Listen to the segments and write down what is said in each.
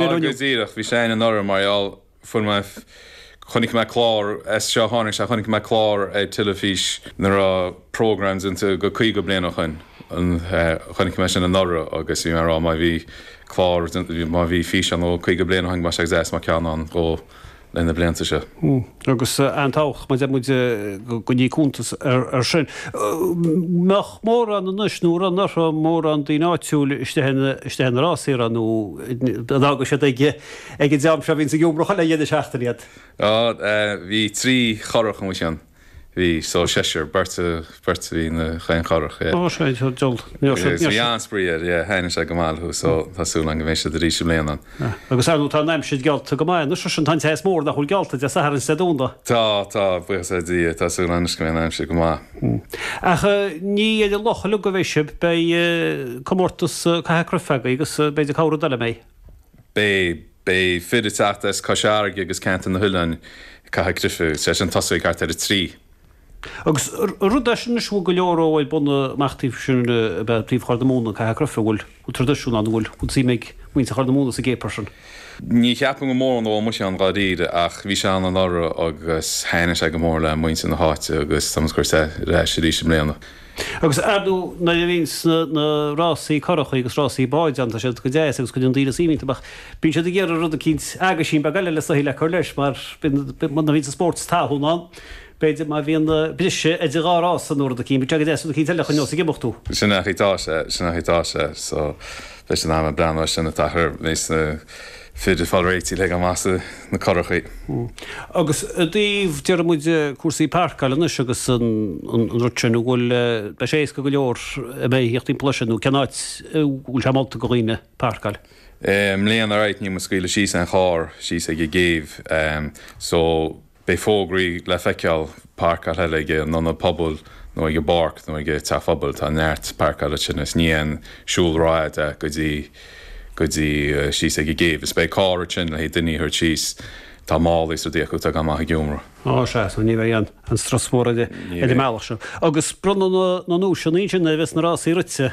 Go díreach, bhí sé ann anuraidh mar gheall, fuair mé, chonaic mé clár, as seo tháinig sé, chonaic mé clár ar teilifís nuair a raibh programme déanta go 50 bliain ó shoin, chonaic mé sin anuraidh agus bhí mé ag rá má bhí clár, má bhí físeán ó 50 bliain ó shoin, bheadh sé go deas dá mbeadh ceann ann dhó, leis na blianta seo. Agus an-tábhachtach mar a deir muid go gcoinní cuntas ar sin. mbeadh mórán anois anuraidh an raibh mórán daoine áitiúil istigh sna rásaí nó an bhfágann siad ag an dream seo a bhíonn ag iomramh chuile dheireadh seachtain iad? Bhí trí churrach amuigh ann. bhí so seisear, beirt a beirt bhí na chaon churrach yeah. Ó sé seo dul níor sé níor sé. Bhí an-spraoi ann yeah thaithin sé go maith thú so tá súil a'm go mbeidh siad arís i mbliana. Agus ar ndóigh tá an aimsir geallta go maith anois sin tá an teas mór nach bhfuil geallta Dé Sathairn is Dé Domhnaigh. Tá tá buíochas le Dia tá súil anois go mbeidh an aimsir go maith. Ach ní fhéidir loch a ligean go bhfeighse beidh comórtas caitheamh cruife agaibh agus beidh de cabhar do le mbeidh. Beidh, beidh fir ag teacht as Cois Fharraige agus ceantar na nOileán, ag caitheamh cruife, is é sin, ag tosú thart ar a trí. Agus rud é sin anois a bhfuil go leor ó ag bunadh amach taobh sin de taobh Chorr na Móna, caitheamh cruife, a bhfuil, bhfuil traidisiún ann, a bhfuil, bhfuil suim ag muintir Chorr na Móna sa gcéapar sin. Ní cheapaim go mórán a bhfuil muise ann dháiríre ach bhí sé ann anuraidh agus thaitnigh sé go mór le muintir na háite agus tá muid á chur ar ais arís i mbliana. Agus ar ndóigh nuair a bhíonns na rásaí currachaí agus rásaí báid ann tá siad go deas agus cuireann daoine suim iontu ach bíonn siad ag iarraidh rud eicínt, aguisín beag eile le soitheach le cur leis mar bíonn, nuair a bhíonns sports talún ann b'fhéidir má bhíonn briseadh idir dhá rása nó rud eicínt, bíonn sé go deas rud eicínt eile a choinneáil ag imeacht thú. Sin nach í tá sé, sin nach í tá sé so leis an am ag breathnú ar sin an t-achar a bhíonns na. Fir ag fáil réitithe le goil amach sna currachaí. Agus i dtaobh, déarfaidh muid, cúrsaí pairceáil anois agus an rud sin, an bhfuil, beidh sé éasca go leor a bheith ag tíocht timpeall ansin nó cén áit a bhfuil sé molta go dhaoine pairceáil? I mbliana, right, níl muid ag scaoileadh síos aon charr síos ag an gcéibh, so. Beidh fógraí le feiceáil pairceáil ag an ionad pobail nó ag an bpáirc nó ag an teach pobail. Tá neart pairceála ansin is níl aon siúl rófhada go dtí go dtí síos ag an gcéibh. Is beidh carr thart ansin le haghaidh duine a thabhairt síos. Tá málaí is éadaí acu atá ag goil amach ag iomramh. Ó sea, so ní bheidh an an strus mhór ar an mbealach seo. Agus bronnadh na na nduaiseanna ansin nuair a bheas na rásaí rite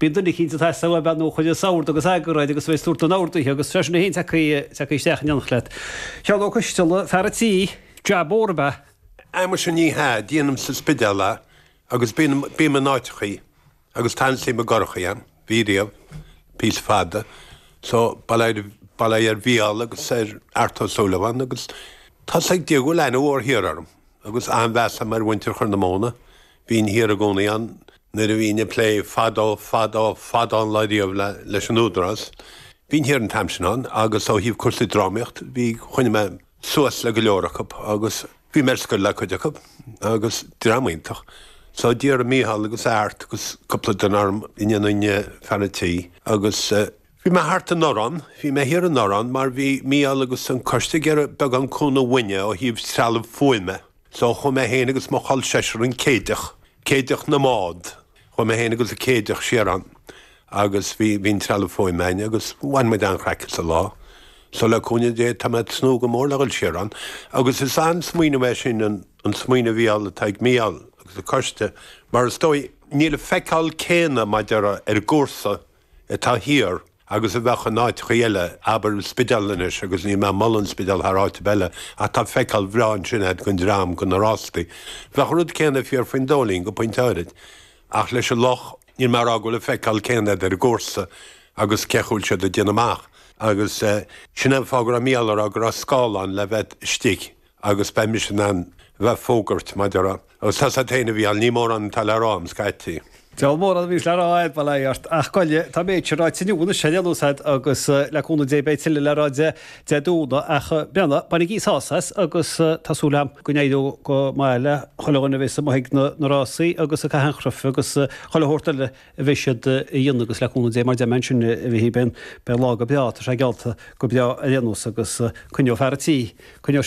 Bíonn duine eicínt atá sa bhean nó chuid is ord agus eagar air agus tú ag tabhairt don ord uirthi agus freisin bhí fhéin tacaí isteach in éineacht leat. Sheán Ó Coisteala, fear an tí, jab mór ab ea. Á muise ní hea, déanaim sa Spidéal é agus bím in áiteachaí agus tá an-suim i gcurachaí a'm, bhí riamh, píosa fada, so bail é ar Mhícheál agus ar Art Ó Súilleabháin agus tá's ag Dia go bhfuil aithne mhór thiar orm agus an-mheas a'm ar mhuintir Chorr na Móna, Bhínn thiar i gcónaí ann nuair a bhínn ag plé fadó, fadó, fadó an lá ariamh leis an Údarás. Bhínn thiar an t-am sin ann agus ó thaobh cúrsaí drámaíocht bhí, choinnigh mé suas le go leor acu agus bhí mé ar scoil le cuid acu agus dream iontach. So d'iarr Micheál agus Art agus cúpla duine orm an ndéanfainn fear an tí agus bhí mé thart in Orán, bhí mé thiar in Orán mar bhí Micheál agus an coiste ag iarraidh beagán cúnamh uainne ó thaobh trealamh fuaime. So chuaigh mé féin agus mo chol seisir an Céideach, Céideach na mbád, chuaigh mé féin agus an Céideach siar ann agus bhí an trealamh fuaime againn agus bhain muid an-chraic as an lá. So le cúnamh Dé tá mé ag tnúth go mór le dhul siar ann agus is an-smaoineamh é sin, an smaoineamh bheo atá ag Mícheál agus a choiste mar is dóigh níl an feiceáil céanna b'fhéidir ar an gcúrsa atá thiar agus a bheadh in áiteachaí eile, abair, an Spidéal anois agus níl mé ag moladh an Spidéal thar áit ar bith eile, ach tá feiceáil bhreá ansin ag an dream, go na rástaí. Bheadh an rud céanna fíor faoin Dóilín go pointe áirid. Ach leis an loch, níl mé ag rá go bhfuil an feiceáil céanna agat ar an gcúrsa agus cén chaoi a bhfuil siad ag déanamh amach. Agus sin an fáth go raibh Micheál ag rá go raibh scáileán le bheith istigh. agus beidh mise in ann bheith ag fógairt maidir a, agus tá sa taine a bhí ann, ní mórán atá le rá agam scaití. Níl mórán a bhíos le rá ar mhaith leat ort, ach goile, tá an méid sin ráite inniu anois, sin é an úsáid, agus le cúnamh Dé beidh tuilleadh le rá Dé Domhnaigh, ach breathnach, bainigí sult as, agus tá súil agam go n-éireoidh go maith le chuile dhuine a bheas sa mhothaigh na rásaí agus a cathainchruif, agus chuile shórt eile a bheas siad a dhéanamh, agus le cúnamh Dé mar a deirim ansin beidh beidh an lá go breá, tá sé geallta go breá ar aon nós, agus coinneoidh fear a' tí, coinneoidh sé.